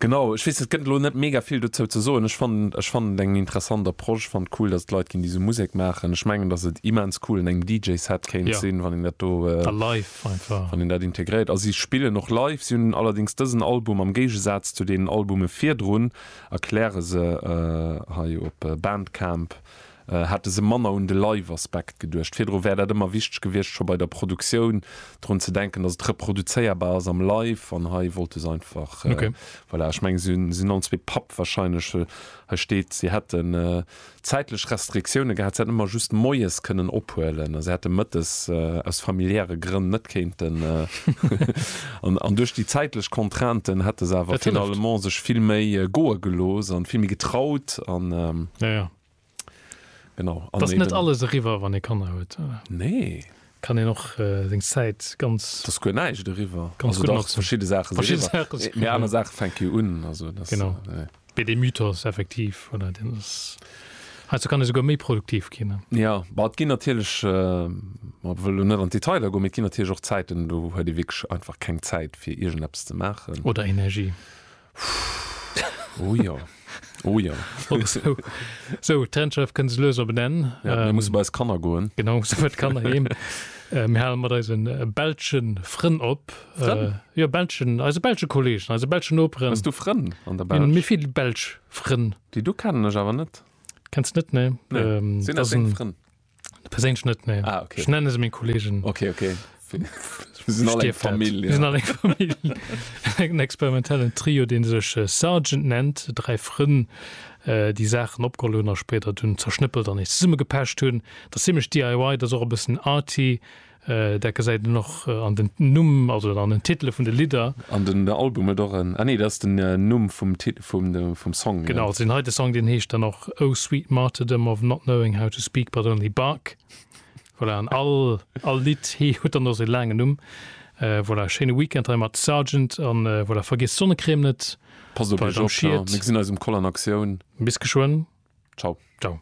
Genau, ech weess net, et gëtt elo net mega vill dozou ze soen. Ech fannen, ech fannen et eng interessant Approche, fand cool, dass et Leit ginn, déi esou Musek maachen. Ech mengen, dass et immens cool un engem DJ-Set kéint Ja. sinn, wann een dat do, A live einfach. wann een dat integréiert. A si spillen och live. Si hunn allerdéngs dësen Album, am Géigesaz zu deenen Albume virdrun, erkläre se hei op Bandcamp, hätte se manner un de Live-Aspekt geduecht. Virdru wär dat ëmmer wichteg gewiescht, scho bei der Produktioun drun ze denken, dass et reproduzéierbar ass am Live, an hei wollte se einfach, voilà. Ech mengen, se sinn all zwee Papp warscheinlech, well hei steet, si hätten zäitlech Restriktioune gehat, se hätten ëmmer just moies kënnen ophuelen a se hätte mëttes aus familiäre Grënn net kéinten an duerch déi zäitlech Contrainten hätte se awer finalement sech vill méi goe gelooss an vill méi getraut an. Genau. An Dass net eben- alles eriwwer, wann ee Kanner huet. Nee. Kann een och seng Zäit ganz. Et ass guer näischt eriwwer. Ganz Also gutt dach, notzen. verschidde Saache si Verschidde eriwwer. Saache si Mee aner Saache fänke jo un. Also dass, Genau. nee. Mee dee Mythos effektiv, voilà, deen ass. Heiansdo kann ee souguer méi produktiv ginn, ne? Ja, bah, et ginn natierlech, mer wëlle lo net an d'Detailer goen, mee et ginn natierlech och Zäiten, do huet ee wierklech einfach keng Zäit, fir iergendeppes ze maachen. Oder Energie. Pff, oh jo. Oh jo. so, so d'Trennschärft kënnt se lues op en Enn. Ja, mir ähm, musse bei eis Kanner goen. Genau, so wat Kanner heem. Äh, mir halen mat eisen äh, belschen Frënn op. Frënn? Äh, ja, belschen, eise belsche Kollegen, eise belschen Operen. Hast du Frënn an der Belsch? Mir, mir vill belsch Frënn. Déi du kennen ech awer net. Kennst net, ne? Nee. Ähm, Sinn das eng Frënn? Perséinlech net ne ah, okay. Ech nenne se minn Kolleegen. Okay, okay. en experimentellen Trio, den sech äh, Sergeant nennt, drei Frënn äh, die Sachen opgeholner später dun zerschnëppelt an is summe gepecht hunn. Dat ziemlich DIY, dat och e bessen Arti Dat gesäit een och an den Numm, also an den Titele vun de Lidder. An den Album huet och en, ah nee, dat ass den Numm vum Tit-, vum de, vum Song. Genau, also deen heite Song, deen heescht dann och Oh sweet martyrdom of not knowing how to speak but only bark. Voilà, an all, all Lidd hee-, huet dann och sou laangen Numm. Voilà, schéine Weekend hei mat Sargent a voilà, vergiesst d'Sonnecrème net. Passt op iech op, jo. Mir gesinn eis um Koll an Aktioun. Bis geschwënn. Ciao. Ciao.